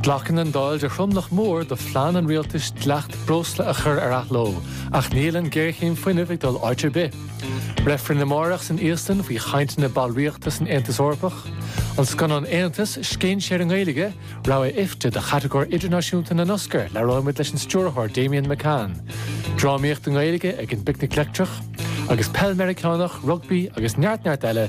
Glacann an Dáil de thromlach mór do phlean an Rialtais dleacht breosla a chur ar athló, ach níl an ghéarchéim fuinnimh ag dul áit ar bith. Reifrinn amárach san Íoslainn faoi chainteanna ballraíochta san Aontas Eorpach. An scannán Aontas, scéinséir i nGaeilge, rogha IFTA do chatagóir idirnáisiúnta na nOscar, labhróidh muid leis an stiúrthóir Damian McCann. Drámaíocht i nGaeilge ag an bPicnic Leictreach. Agus peil Meiriceánach, rugbaí agus neart neart eile,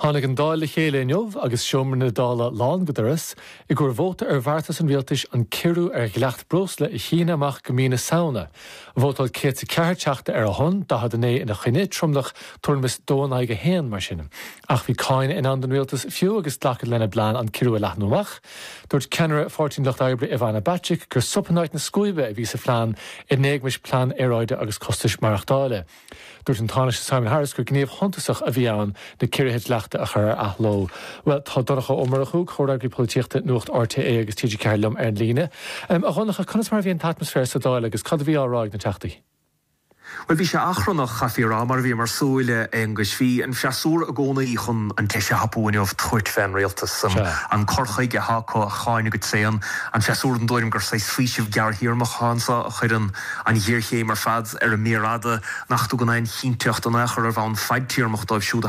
Tháinig an Dáil le chéile inniu agus seomra na Dála lán go doras, i gcomhair vóta ar bheartas an Rialtais an ciorrú ar dhleacht breosla a shíneadh amach go mí na Samhna. Vótáil 104 Teachta ar a shon, 49 ina choinne, tromlach tuairim is dó in aghaidh a haon, mar sin. Ach bhí cáineadh i ndán don Rialtas fiú agus glacadh lena bplean an ciorrú a leathnú amach. Dúirt ceannaire Pháirtí an Lucht Oibre Ivana Bacik gur sop in áit na scuaibe a bhí sa phlean in éagmais plean aeráide agus costais mhaireachtála. Dúirt an Tánaiste Simon Harris gur gníomh suntasach a bhí ann na ciorruithe dleachta a chur ar athló. Bhuel, tá Donncha Ó Murchú, Comhfhreagraí Polaitíochta Nuacht RTÉ agus TG4 liom ar an líne. A Dhonncha, conas mar a bhí an t-atmaisféar sa Dáil agus cad a bhí á rá ag na Teachtaí? Bhuel, bhí sé achrannach, chaithfí a rá, mar a bhí mar súil, a Aonghuis. Bhí an freasúra i gcónaí chun an deis a thapú inniu tabhairt fén Rialtas, an cur chuige atá acu a cháineadh go tréan, an freasúra den tuairim gur saghas faoiseamh gearrthéarmach atá anseo a chuireann an ghéarchéim ar fad, ar an méar fhada nach dtugann aon chinnteacht in aon chor ar bhonn fadtéarmach dóibh siúd a